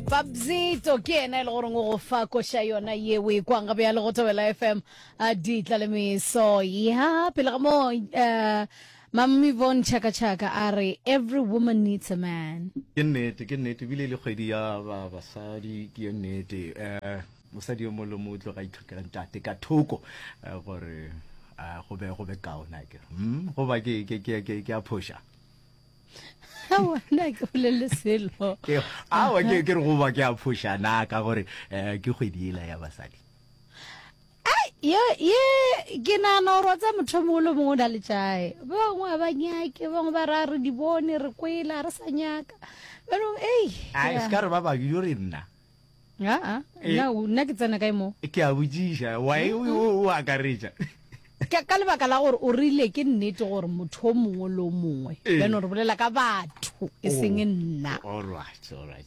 Babzito ke yena e le goreng o go fa koša yona ye o e kwang gabe ya le go thabela fm a di tla le meso ya pele ga moo um mammi von chaka chaka a re every woman needs a man ke nnete ke nnete ebile e le kgwedi ya ba basadi ke ye nnete um mosadi yo mongwe le mongwe o tlo ga itlhokela ntate ka thoko eh, gore eh, go be go be kaona ke mm, goba ke ke- ke- ke- ke a phoša awana ke bolele selo awa ke ke re go ba ke a phoša na ka gore eh, ke kgwedi ela ya basadi yo ye ke nagana gore wa tsa motho mongwe le mongwe o na le jae bangwe a ba nyake bangwe ba ra re di bone re kwela re sa nyaka banong ei se ka re ba bangwe yo re nna aa eh. na nna ke tsena kae mo ke a botsiša wae mm, mm. o akaretša ka lebaka la gore o rile ke nnete gore motho o mongwe le o mongwe eh. beno re bolela ka batho e oh, seng nna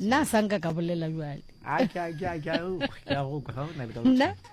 nna a sanka ka bolela jale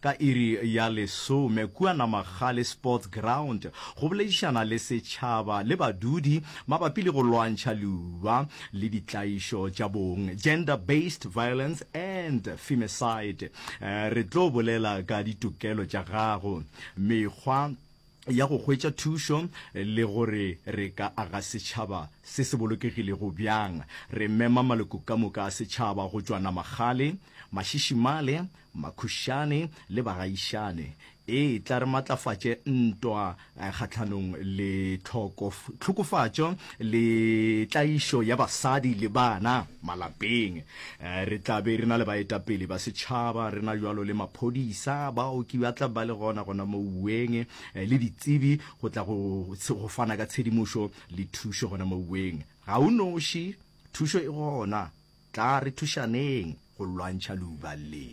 ka iri ya lesome kua Namagale Sports Ground go boledišana le setšhaba le badudi mabapi le go lwantšha leuba le ditlaišo tša bong, gender based violence and femicide. Re tlo bolela ka ditokelo tša gago, mekgwa ya go hwetša thušo le gore re ka aga setšhaba se se bolokegilego bjang. Re mema maloko ka moka a setšhaba go tšwa Namagale, Mashishimale, Makhušane le bagaišane, e tla re matlafatše ntwa kgahlanong le tlhokofatšo le tlaišo ya basadi le bana malapeng. Re tla be re na le baetapele ba setšhaba, re na bjalo le maphodisa, baoki ba tla ba le gona gona mo uweng, le ditsebi go tla go fana ka tshedimošo le thušo gona mo uweng. Ga o noši, thušo e gona Tla re thušaneng go lwantšha leuba le.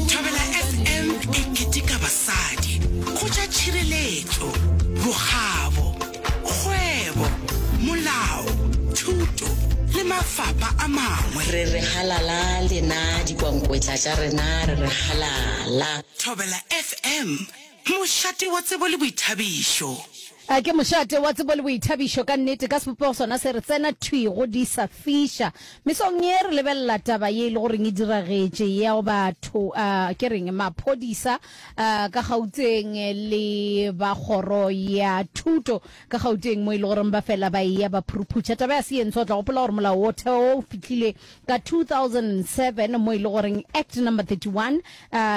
Thobela FM e keteka basadi, go tša tšhireletšo, bokgabo, kgwebo, molao, thuto le mafapa a mangwe. Re re halala lena dikwankwetla tša rena re re halala. Thobela FM Mošate wa tsebo le boithabišo. A ke mošate wa tsebo le boithabišo ka nnete ka sebopego sona se re tsena thwi go di sa fiša? Mesong ye re lebelela taba ye e le goreng e diragetše ya go batho a ke reng maphodisa a ka Gauteng le ba kgoro ya thuto ka Gauteng mo e le goreng ba fela ba eya ba phuruphutša taba ya se ye ntsho. O tla gopola gore molao wo theo o fihlile ka 2007 mo e le goreng Act Number 31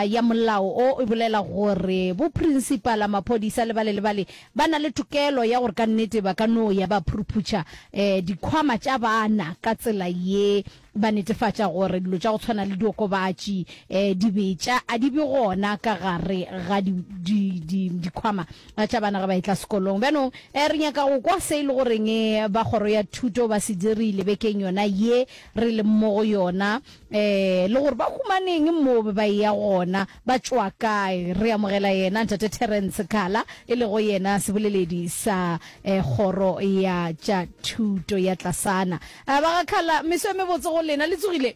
ya molao o e bolela gore bo principala maphodisa le bale le bale ba na le tokelo ya gore ka nnete ba ka no ya ba phuruphutša eh, dikhwama tša bana ka tsela ye ba netefatša gore dilo tša go tshwana le diokobatši eh, dibetša a di be gona ka gare ga dikhwama A tša bana ge ba etla sekolong. Bjanong eh, re nyaka go kwa se e le goreng eh, ba Kgoro ya Thuto ba se dirile bekeng yona ye re leng mo go yona, eh, le gore ba humaneng moo be ba eya gona, ba tšwa kae. Re amogela yena Ntate Terrence Kala, e lego yena seboleledi sa eh, Kgoro ya tša Thuto ya Tlasana. Eh, ba ga Kala, meso e mebotse go lena. Le tsogile?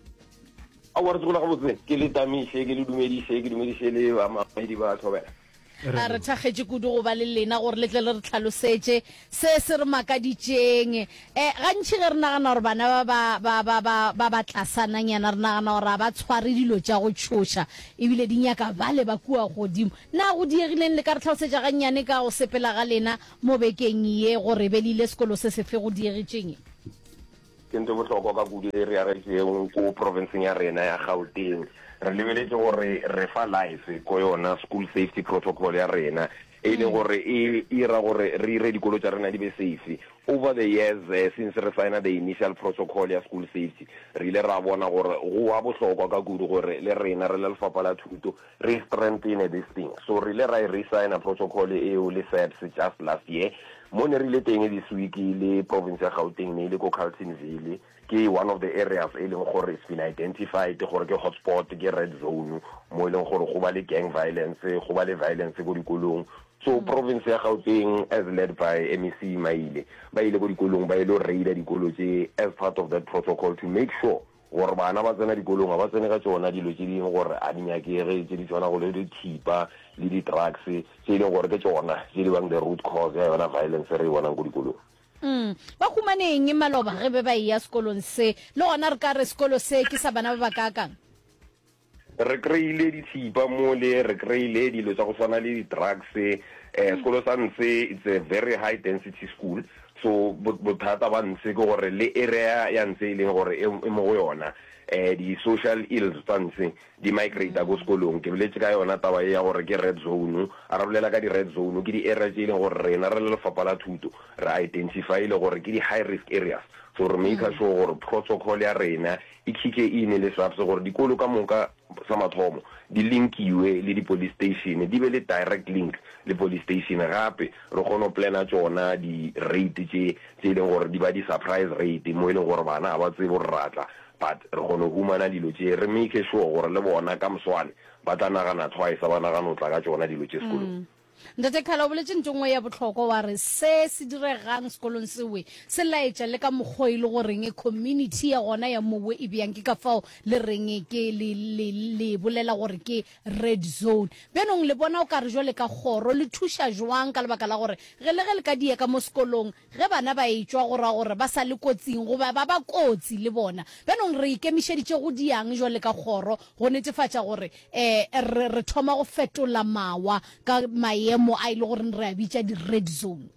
Aowa, re tsogola gabotse. Ke le tamiše, ke le dumediše, ke dumediše le bamamedi ba Thobela. A re thakgetše kudu go ba le lena gore le tle le re tlhalosetše se se re makaditšeng. E, gantši ge re nagana gore bana ba ba, ba, ba, ba, ba ba tlasananyana re nagana gore ga ba tshware dilo tša go tšhoša ebile di nyaka bale ba kua godimo. Na go diegileng? Le ka re tlhalosetša gannyane ka go sepela ga lena mo bekeng ye gore be le ile sekolo se sefe go diegetšeng? Ke ntho e bohlokwa ka kudu e e reagetšwego ko profenseng ya rena ya Gauteng. Re lebeletše gore re fa life ko yona school safety protocol ya rena, e e leng gore e ira gore re ire dikolo tša rena di be safe. Over the years since re signa the initial protocol ya school safety, re ile ra bona gore go wa bohlokwa ka kudu gore le rena re le Lefapha la Thuto, Re strengthene this thing. So re ile ra e re-signer protocol eo le SAPS just last year, mo ne re ile teng this week le province ya Gauteng ne e le ko Carltonville, ke one of the areas e leng gore it's been identified gore ke hotspot, ke red zone mo e leng gore go ba le gang violence, go ba le violence ko dikolong. So province ya Gauteng as led by MEC Maile ba ile ko dikolong ba ile go raider dikolo tse as part of that protocol to make sure Gore bana ba tsena dikolong ga ba tsene ka tšona dilo tše dingwe gore a di nyakege tše di tšwanago le dithipa le di drugs tše e leng gore ke tšona tše di bang the root cause ya yona violence re e bonang ko dikolong. Umm ba humaneng maloba ge be ba eya sekolong se? Le gona re ka re sekolo se ke sa bana ba ba kaakang? Re kry-ile dithipa mole, re kry-ile dilo tsa go swana le di-drugs. Um sekolo sa Ntshe it's a very high density school, so bothata ba Ntshe ke gore le area ya Ntshe e leng gore e mo go yona, um di-social ills tsa Ntshe di migrate-a ko sekolong. Ke boletse ka yona taba e ya gore ke red zone, a re bolela ka di-red zone, ke di-area tse e leng gore rena re le lefapha la thuto re identify-ile gore ke di-high risk areas, so re maker sure gore protocol ya rena Ikhiche e inele SAPS gore dikolo ka moka, sa mathomo, di linkiwe le di police station, di be le direct link le police station, gape re kgone go planner tšona di rate tše tše e leng gore di ba di surprise rate mo e leng gore bana ga ba tsebe gore ra tla, but re kgona go humana dilo tše, re make sure gore le bona ka moswane ba tla nagana twice ba nagana go tla ka tšona dilo tše sekolong. Ntate Khala o boletše ntho nngwe ya bohlokwa wa re se se diregang sekolong sewe se laetša le ka mokgwa e le goreng community ya gona ya mowe e bjang ke ka fao le reng ke le, le, le e bolela gore ke red zone. Bjanong le bona o ka re jwale ka kgoro le thuša jwang ka lebaka la gore ge le ge le ka diya ka mo sekolong Ge bana ba etšwa go ra gore ba sa le kotsing goba ba ba kotsi le bona. Bjanong re ikemišeditše go di'ang jwale ka kgoro go netefatša gore re re thoma go fetola mawa ka mayemo a e le goreng re a bitša di-red zone?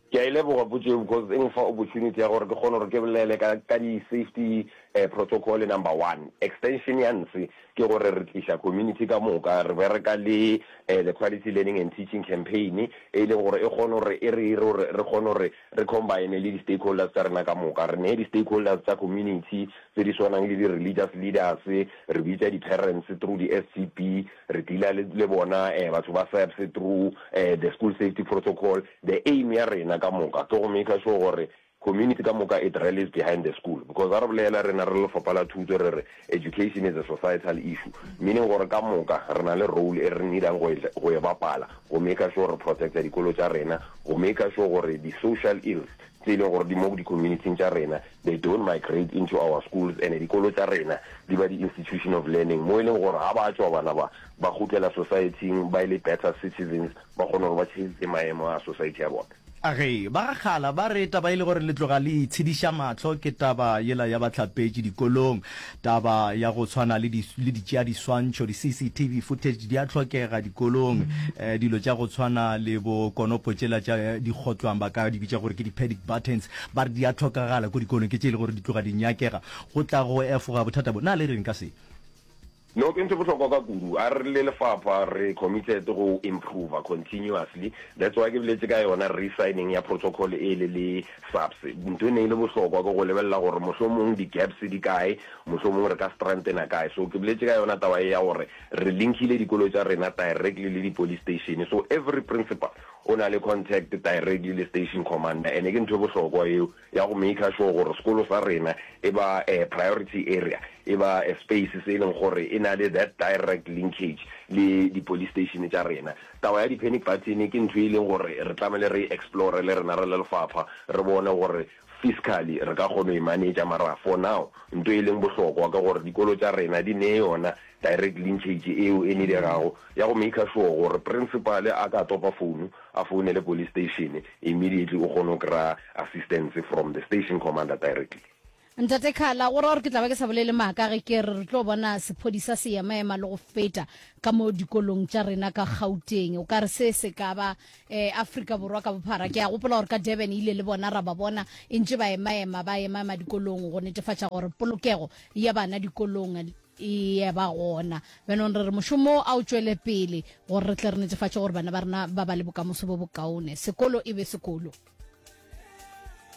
Ke a e leboga potso ye because e nfa opportunity ya gore ke kgone gore ke bolele ka di-safety Protocole number one, extension ya nse ke gore re tliša community ka moka, re bereka le the Quality Learning and Teaching Campaign e e leng gore e kgone gore e re ire gore re kgone gore re combine le di-stakeholders tša rena ka moka. Re ne di-stakeholders tša community tse di swanang le di-religious leaders, re bitša di-parents through di-SCP, re dealer le le bona batho ba SAPS through the School Safety Protocol. The aim ya rena ka moka ke go maker sure gore Community ka moka it rallies behind the school because ga re bolela rena re le lefapha la thuto re re education is a societal issue meaning gore ka moka re na le role e re needang go e go e bapala go maker sure re protecta dikolo tša rena go maker sure gore di social ills tse e leng gore di mo di community tša rena they don't migrate into our schools and dikolo tša rena di ba di institution of learning mo e leng gore ga ba tšwa bana ba ba gutlela society ba e le better citizens ba kgone gore ba change maemo a society ya bona. A Ge ba gakgala ba re taba e le gore le tloga le itshediša mahlo ke taba yela ya bahlapetši dikolong. Taba ya go tshwana le di le ditšeadiswantšho, di-CCTV footage, di a hlokega dikolong. Eh, dilo tša go tshwana le bo konopo tšela tša di kgotlwang ba ka di bitša gore ke di-panic buttons, ba re di a hlokagala ko dikolong, ke tše e le gore di tloga di nyakega go tla go efoga bothata bo. Na le reng ka se? No, ke ntho e bohlokwa ka kudu. A re le lefapha re committed go improver continuously. That's why ke boletše ka yona re-signing ya protocol ele le SAPS. Ntho e ne e le bohlokwa ke go lebelela gore mohlomong di-gaps di kae, mohlomong re ka strengthena kae. So ke boletše ka yona taba ye ya gore re linkile dikolo tša rena directly le di-police station. So every principal o na le contact directly le station commander and ke ntho e bohlokwa eo. ya go maker sure gore sekolo sa rena e ba a priority area, e ba a space se e leng gore e na le that direct linkage le di police station tša rena. Taba ya di panic button ke ntho e leng gore re tlamehile re e explore le rena re le lefapha, re bone gore fiscally re ka kgona go e manager, mara for now nto e leng bohlokwa ke gore dikolo tša rena di nee yona Direct linkage eo e niregago ya go maker sure gore Principal a ka topa founu, a founele Police Station immediately o kgone go kry-a assistance from the Station Commander directly. Ntate Khala o ra gore ke tla ba ke sa bolele maaka ge ke re re tlo bona sephodisa se emaema le go feta ka mo dikolong tša rena ka Gauteng. O ka re se se ka ba eh, Afrika Borwa ka bophara. Ke a gopola gore ka Durban e ile le bona ra ba bona e ntše ba emaema ba emaema dikolong go netefatša gore polokego ya bana dikolong Eya, ba gona. Bjanong re re mošomo wo a o tšwele pele gore re tle re netefatše gore bana ba rena ba ba le bokamoso bo bokaone. Sekolo e be sekolo.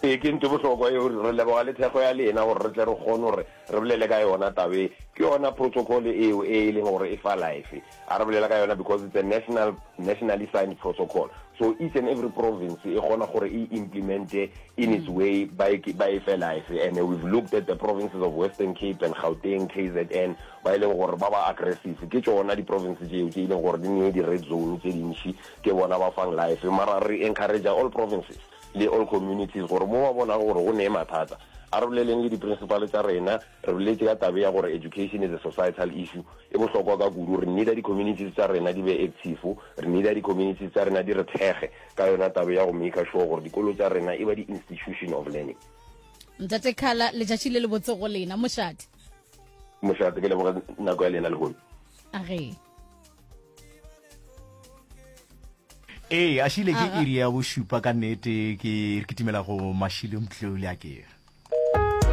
Ee, ke nto e bohlokwa eo. Re leboga le thekgo ya lena gore re tle re kgone gore re bolele ka yona taba e. Ke yona protocol eo e e leng gore e fa life. A re bolela ka yona because it's a national, nationally signed protocol. So each and every province e kgona gore e implemente in its way ba e, ba e fe life. And we've looked at the provinces of Western Cape and Gauteng, KZN, ba e leng gore ba ba aggressive. Ke tšona di-province tšeo tše e leng gore di nee di-red zone tše dintši, ke bona ba fang life. Mara re encouragea all provinces le all communities gore mo ba bonago gore go nee mathata, a re boleleng le di-principal tša rena, Re boletše ka taba ea gore education is a societal issue e bohlokwa ka kudu. Re needa di communities tša rena di be active. Re needa di communities tša rena di re thekge ka yona taba ea go maker sure gore dikolo tša rena e ba di institution of learning. Ntate Khala, letšatši le lebotse go lena. Mošate. Mošate, ke leboge nako ya lena lehono. A re. ee a šile ke iri ya bošupa ka nnete ke kitimela go mashilo mtlole a kere